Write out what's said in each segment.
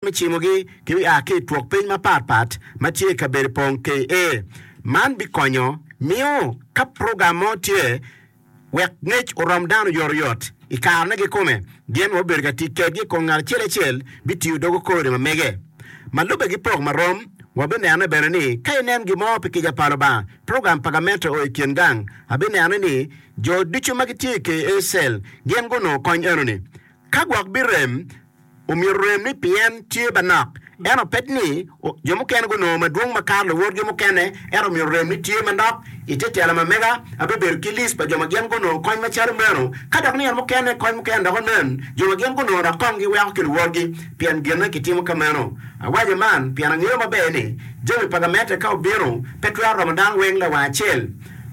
me cimogi ki me a ki i twok piny mapat pat ma tye i kabedo pong KA. Man bikonyo miyo ka program mo tye wek ngec orom dano oyotoyot i karene kikome, gin ma obedo ka tic kedgi kong ngat acel acel bitiyo dogo kode ma mege. Ma lubbe ki pok marom, wabinene bene ni ka inen gin mo pi kica pa Lubanga, program pa gamente o i kin gang, abinene ni jo ducu ma gitye i KA. cell gin gunongo kony enoni. Ka gwok birem, Omyero orem ni pien tye manok. Ento pet ni jo mukene gunongo madwong makato luwotgi mukene, ento omyero orem ni tye manok. I te telo ma mega, abibedo ki list pa jo ma gin gunongo kony macalo meno. Ka dok nino mukene kony mukene dok onen, jo ma gin gunongo dok kong giweko ki luwotgi pien gine kitimo ka meno. Awaco man pien angeyo maber ni jami pa gamente ka obino, pe twero romo dano weng lawang acel.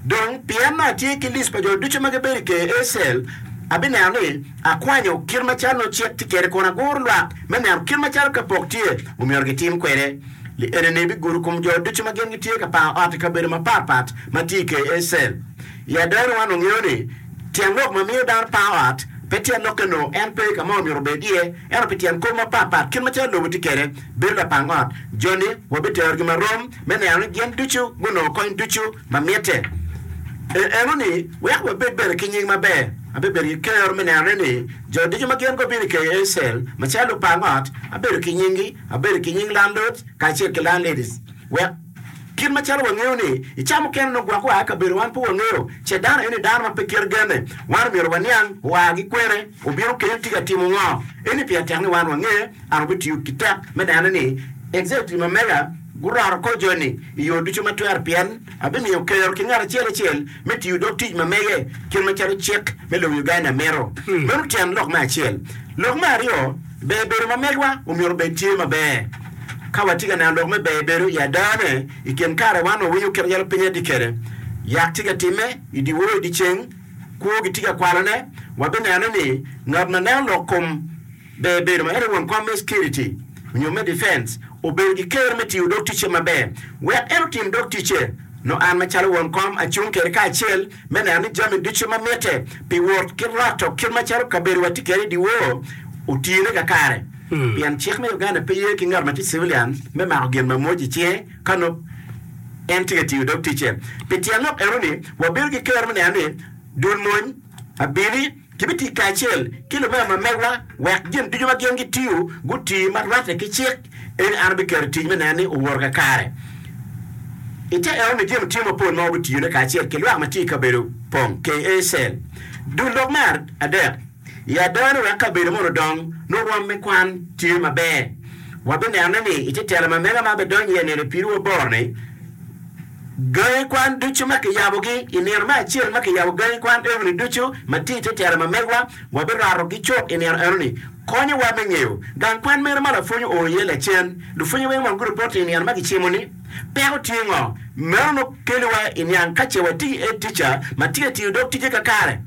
Dong pien atye ki lic pa jo ducu ma gibedo i ker Ecel, abineno ni akwanyo kit macalo nongo cik tye kwede kun aguro lwak me neno kit macalo ka pok tye, omyero gitim kwede. Li enini bigudo kom jo ducu ma gin gitye ka pango ot i kabedo mapat pat ma tye i ker Ecel. I adononi wan wangeyo ni tyen lok ma miyo dano pango ot pe tyen lok-ke nongo en pe ka ma omyero obed iye, ento pi tyen kop mapat pat kit macalo lobo tye kwede. bedo lapang ot, joni wabiterogi marom me neno ni gin ducu gunongo kony ducu ma mitte. I enoni, wek wabed bene ki nying maber, abibedo ki kero me nenone ni jo ducu ma gin gubino i KACL macalo lupang ot, abedo ki nyinggi, abedo ki nying landot kacel ki landladies, wek. Kit macalo wangeyo ni i ca mukene nongo gwok oa i kabedo wan pe wangeyo, ce dano eni dano ma pe kite genne, wan omyero waniang oa ki kwene, obino kene tika timo ngo. Eni pien tek ni wan wangeye, an wabitiyo ki tek me neno ni Executive ma mega guroto kor joni i yo ducu ma twere pien abimiyo kero ki ngat acel acel me tiyo dog tic ma mege kit macalo cik me lobo Uganda mito. Meno tyen lok me acel. Lok me aryo. Ber bedo ma megwa omyero obed tye maber. Ka watye ka neno lok me ber bedo i adane i kin kare wan wawinyo kit yalo piny atye kwede, yak tye ka timme i dyewor i dyeceng, kwo gitye ka kwalone, wabineno ni ngat ma neno lok kom ber bedo ma en aye won kom me cekiriti nyo me difenc obedo ki kero me tiyo dog ticce maber wek en otim dog ticce. Nongo an macalo won kom acung kwede kacel. me neno ni jami ducu ma mitte pi wot ki loto kit macalo kabedowa tye kwede i dyewor otine kakare, pien cik me Uganda pe ye ki ngat ma tye civilian me mako gin ma mwoc i cinge ka nongo en tye ka tiyo dog ticce. Pi tyen lok enoni, wabedo ki kero me neno ni dul mony, abili, Kibitic kacel ki lubanga ma megwa wek gin ducu ma gin gitiyo guti ma rwatte ki cik. Eka an abiketo tic me neno ni owoto kakare. I te eno-ni, jemo tye mapol ma wabitiyone kacel ki lwak ma tye i kabedo pong, KA. Cell. Dul lok me adek. I adowa ni wek kabedo mono odong nongo rwom me kwan tye maber, wabinenone ni i te telo ma mega ma abidonyo iye nino i pidowa boro-ni, Gangi kwan ducu ma kiyabogi, I nino me acel ma kiyabo gangi kwan eno-ni ducu ma tye i te tela ma megwa, wabirwatogi cok i nino eno-ni. Konyowa me ngeyo gang kwan mene ma lapwony oo iye lacen. Lupwonye weng wang guripot ni i nino ma gicimo-ni, peko tye ngo? Meno nongo keliwa i niang ka ce watiyo i edtica ma tye ka tiyo dog tije kakare.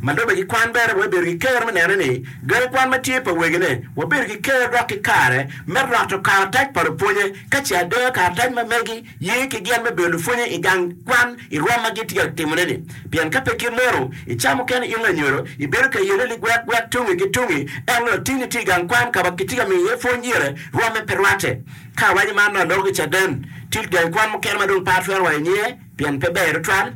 Ma lubbe ki kwan bene, wabibedo ki ker me neno ni gangi kwan ma tye pa wegine wabedo ki ker dok ki kare me rwato karatac pa lupwonye ka ce adoyo karatac ma megi Ye ki gen me bedo lupwonye i gang kwan i rwom ma gitye ka timone-ni. Pien ka pe kit meno, icamo keni in lanyodo, ibedo ka yelle ligwek gwek tungi ki tungi, ento latinni tye i gang kwan ka ma kitye ka miyo iye pwony gire, rwomme pe rwatte. Ka awaco man dong adoko ki caden. Tit gang kwan mukene ma dong pe atwero waco nyinge, pien pe ber tutwal.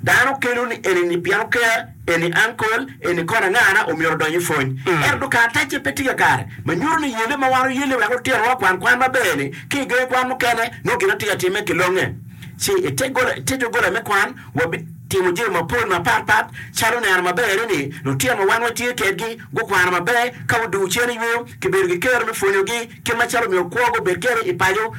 Dano kelo ni eni-ni pien oker. Eni ankol, eni kona ngana omyero odony i pwony? Ento dong kara tacce pe tye kakare, ma nyuto ni yelle ma wan oyelle wek otirawa okwan kwan maber-ni ki i gangi kwan mukene nongo gin watye ka timme kilonge. Ci i te doggola me kwan, wabitimo jami mapol mapatpat calo neno maber ni lutino ma wan watye kedgi gukwano maber ka oduu cen i yo, kibedo ki kero me pwonyogi, Kit macalo myero kwo gubed kwede i paco,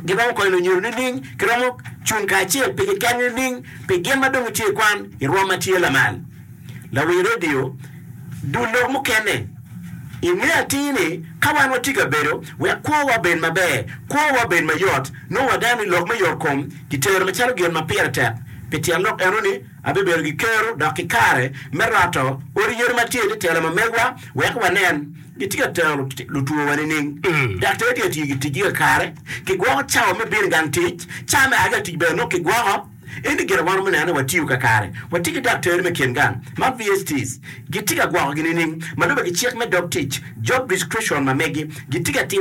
giromo konyo lunyodo nining? Giromo cung kacel pi keken nining? Pi gin ma dong itye ikwan i rwom ma tye lamal, lawi redio, dul lok mukene. Inge atir ni, ka wan watye ka bedo wek kwowa obed maber, kwowa obed mayot, nongo waneno ni lok me yotkom kitero macalo gin ma pire tek. Pi tyen lok eno ni, abibedo ki kero dok ki kare me roto odi yodi ma tye ni telo ma megwa wek wanen. Gitye ka tero lutwowa nining? Daktar tye ka tiyo ki ticgi kakare. Kigwoko cawa me bino i gang tic. Cawa me a ki i tic bene nongo kigwoko. Ento gin ma wan romo neno ni watiyo kakare, watye ki daktar me kin gang ma VSTs gitye ka gwokogi nining? Ma lubbe ki cik me dog tic, job description, ma megi, gitye ka timo.